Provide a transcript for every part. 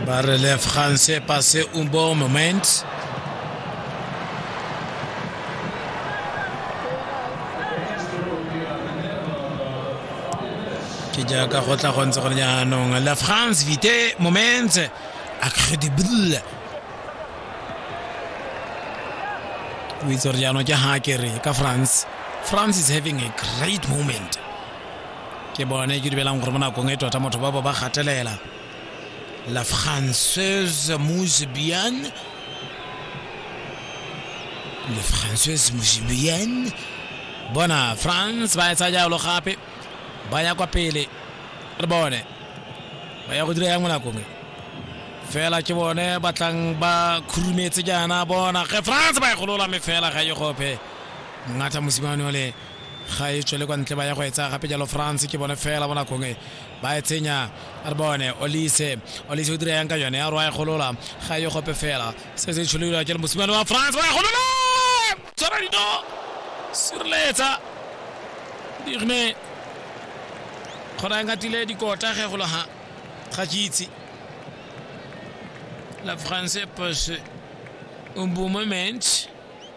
Ba re le France passe un bon moment. ke jaaka go tla go ntse go le jaanong la france vite moment incredible o itse gore jaanong ke ha ke re ka france france is having a great moment ke bone ke dumelang gore mo nakong e tota motho ba bo ba gatelela la française musebian le française musebian bona france ba etsa jalo gape ba ya kwa pele re bone ba ya go dira yang mo nakong e fela ke bone batlang ba khurumetse jaana bona ge france ba e golola me fela ga e gophe ngata mosimane ole ga e tswele kwa ntle ba ya go e tsaya gape jalo france ke bone fela mo nakong e ba e tsenya re bone olise olise o dira yang ka yone ya roa e golola ga e gope fela se se tsholola ke mosimane wa france wa e golola tshwara dito sireletsa dirne kgona e ngatile dikota ge golo ga ga ke itse la france pose un bon moment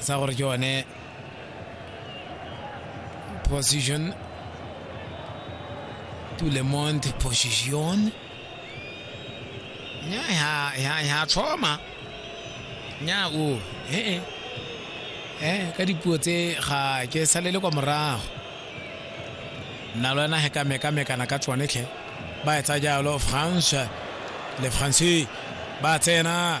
sa gore ke one position tout le monde position nya ya ya ya thoma nya o eh eh eh ka dipuo tse ga ke salele kwa morago nna le wena he ka mekamekana ka tsone tlhe ba etsa jalo france le francais ba tsena